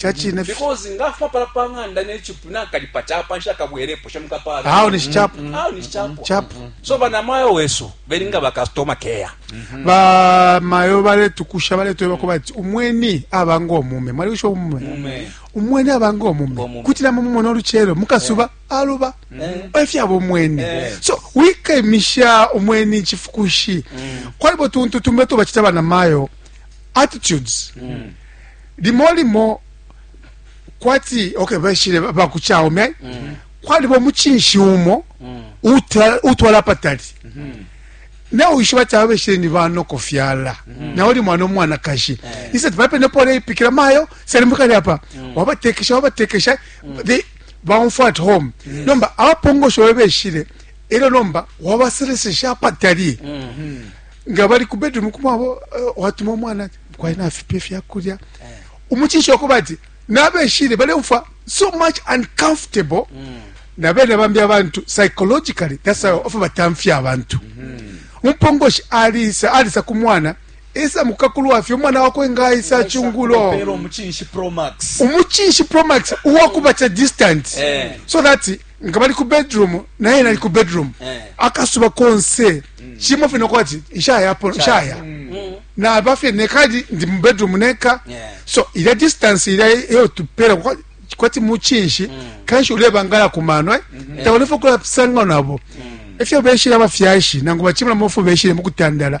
Ca cine fye. Because nga afuma pala pa ng'anda ne chipu nakalipa chapa nsha kabwelepo sha mukapala. Aho ni chapu. Mm-hmm. Aho ni chapu. Chapu. So bana mayo wesu belinga ba customer care. Mm-hmm. Ba mayo bale tukusha bale tweba ko bati umweni abango mume. Mali usho mume. Mume. Umweni abango mume. Kutila mumu mono luchero mukasuba yeah. aluba. Mm. Mm-hmm. Efya bo mweni. Yeah. So wike misha umweni chifukushi. Mm. Kwa ibo tuntu tumbeto bachita bana mayo attitudes. Mm. limo limo kwati okay bashile ba ku Chaomei mm -hmm. kwaliba omuchinshi umo mm -hmm. utwala patali mm -hmm. na uishiba ti ababeshile ni banoko fyala mm -hmm. na uli mwana omwanakashi mm -hmm. isati bapene pole ipikila mayo salimbukali apa mm -hmm. wabatekesha wabatekesha mm -hmm. they baumfwa at home mm -hmm. nomba abapongosho babeshile elo nomba wabaselesesha apatali mm -hmm. nga bali ku bedroom kumwabo uh, eh, watuma omwana kwali nafipa ifyakulya umucinshi wakuba ati nabeshile baleumfwa so much uncomfortable mm. na bene bambi abantu psychologically that's how ofa batamfya abantu mm-hmm. umpongoshi alisa alisa ku mwana esa mukakulwafye umwana wakwe ngaisa chungulo umuchinshi promax uwakubacha distant eh. so that nga bali ku bedroom naye mm. nali ku bedroom eh. akasuba konse mm. kimo fye nokuba ti nshayapo nshaya mm. naba fye nekali ndi mu bedroom neka so ilya distance ilya eyo tupera kwati muchinshi kanshi ulebangala ku mano eh? mm-hmm. taulefe okulapusanga nabo efyo beshile abafyashi nangu bacimula mofu beshile mukutandala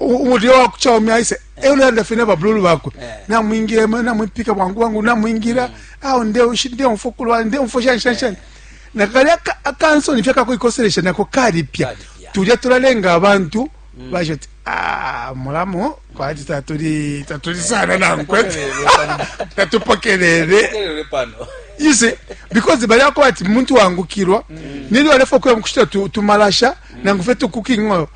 umulio wa kucha umi aise eh. eule anda fina bablulu bakwe eh. namwingira ema namwipika bwangu bwangu namwingira mm. awo nde ushi nde mfukulwa nde mfosha shansha eh. na kali akanso nifya kako ikoselesha nako kali pya tulya tulalenga abantu mm. baje ati ah mulamu kwati tatuli tatuli sana nankwe tatupokelele you see because bali ako ati muntu wangukirwa mm. nili walefa kuya mkushita tumalasha mm. nangu fetu cooking oil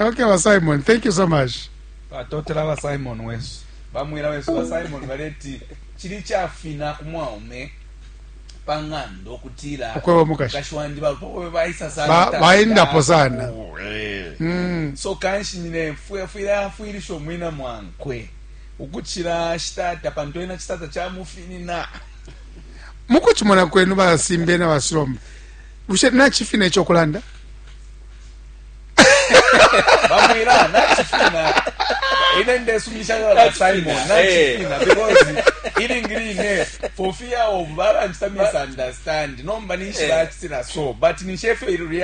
Okay, ba Simon, thank you so much. Batotela ba Simon wesu. Bamwila wesu ba Simon baleti chili chafina ku mwaume pang'anda okutila okweba mukashi wandi balupokobe baisa sana baendapo sana eh. mm. so kanshi nyine fwile afwilisha omwina mwankwe ukuchila shitata pantu ena chitata chamufinina mukuchimona kwenu basimbe na basilomba bushe nachifina ekyokulanda bamwira nachifina ine ndesumisha kala simon nachifina because ilingi line for fear of baranchita misunderstand nomba ninshi bachitira so but ninshi efyo